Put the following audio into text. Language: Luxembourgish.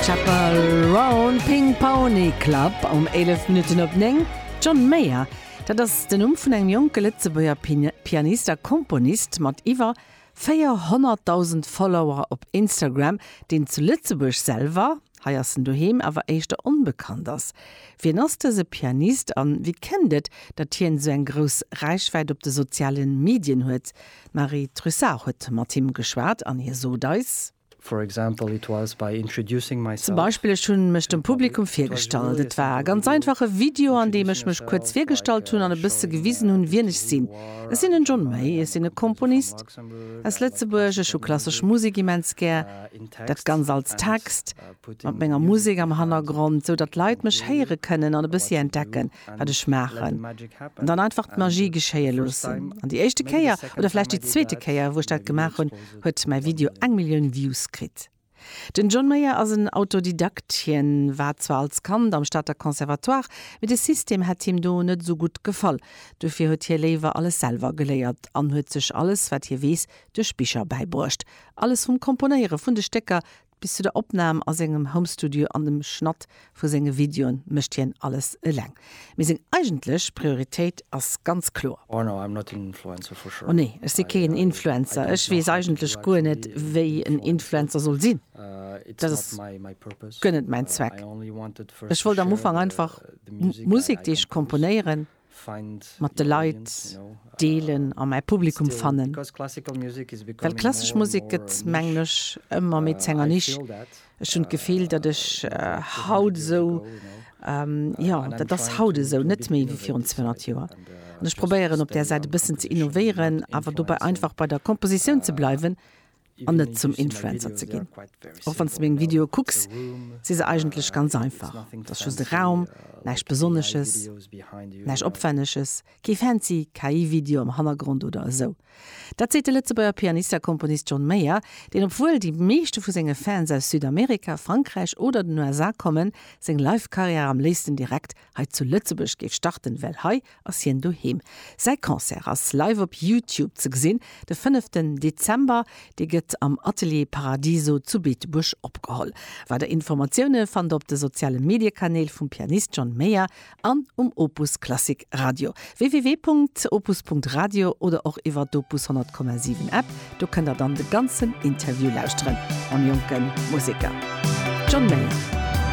Chapel Roan, Ping Pony Club um 11 Minutten op 9. John Mayer, dat ass den Numm vun engem jonke Lëtzebuerger Pianist a Komponist mat iwwer 400.000 Follower op Instagram, deen zu Lëtzebuerg selwer, hei ass en doheem, awer éischter onbekannt ass. Wien ass dëse Pianist a wéi kënnt et, datt hien esou eng grouss Räichwäit op de soziale Medien huet? D'Marie Trussart huet mat him geschwat an hie sot eis. For example, it was by introducing myself. Zum Beispill, ech hunn mech dem Publikum virgestallt. Et war e ganz einfache Video, an deem ech mech kuerz virgestallt hunn an e bësse gewisen hunn, wien ech sinn. Ech sinn den John May, ech sinn e Komponist aus Lëtzebuerg, ech hu klassesch Musek immens gär. Dat Ganzt als Text, mat menger Musek am Hannergrond, sou datt d'Leit mech héiere kënnen an e bëssi entdecken, wat ech maachen. An dann einfach d'Magie geschéie loossen. An déi éischte Kéier, oder vläicht déi zweete Kéier, wou ech dat gemaach hunn, huet mäi Video eng Millioun Views kritt. Den John Mayer ass en Autodidakt, hien war zwar als Kand am Stater Conservatoire, mee de System hätt him do net esou gutt gefall. Dofir huet hie léiwer alles selwer geléiert an huet sech alles, wat hie weess, duerch Bicher bäibruecht. Alles vum Komponéiere vun de Stécker, Bis zu der Opnam a sengem Homestudio an dem Schnatt vu senge Videoe mécht hien alles eleng. Mee seng eigentlech Prioritéit ass ganz kloer. Oh nee, ech si keen Influencer. Ech weess eigentlech guer net, wéi en Influencer soll sinn. Dat ass guer net mäin Zweck. Ech wollt am Ufank einfach Musek, déi ech komponéieren, mat de Leit deelen a mäi Publikum fannen. Well klassesch Musek gëtt, mengen ech, ëmmer méi zu enger Nisch. Ech hunn d'Gefill, datt ech haut esou, jo, dat ass haut esou, net méi wéi virun 200 Joer. An ech probéieren op där Säit e bëssen ze innovéieren, awer dobäi einfach bei der Kompositioun ze bleiwen an net zum Influencer ze ginn. Och wann s de meng Videoe kucks, si se eigentlech ganz einfach. Et ass just e Raum, näischt Besonnesches, näischt Opwänneges, kee fancy KI-Video am Hannergrond oder esou. Dat seet de Lëtzebuerger Pianist a Komponist John Mayer, deen, obwuel déi meeschte vu senge Fans aus Südamerika, Frankräich oder den USA kommen, seng Live-Karriär am léifsten direkt hei zu Lëtzebuerg géif starten, well hei ass hien doheem. Säi Concert ass live op Youtube ze gesinn, de fënneften Dezember. Dee gëtt am Atelier Paradiso zu Beetebuerg opgeholl. Weider Informatioune fannt der op de soziale Mediekanäl vum Pianist John Mayer an um Opus Klassik Radio, www.opus.radio, oder och iwwer d'Opus 100,7 App. Do kënnt der dann de ganzen Interview lauschteren mam jonke Museker John Mayer.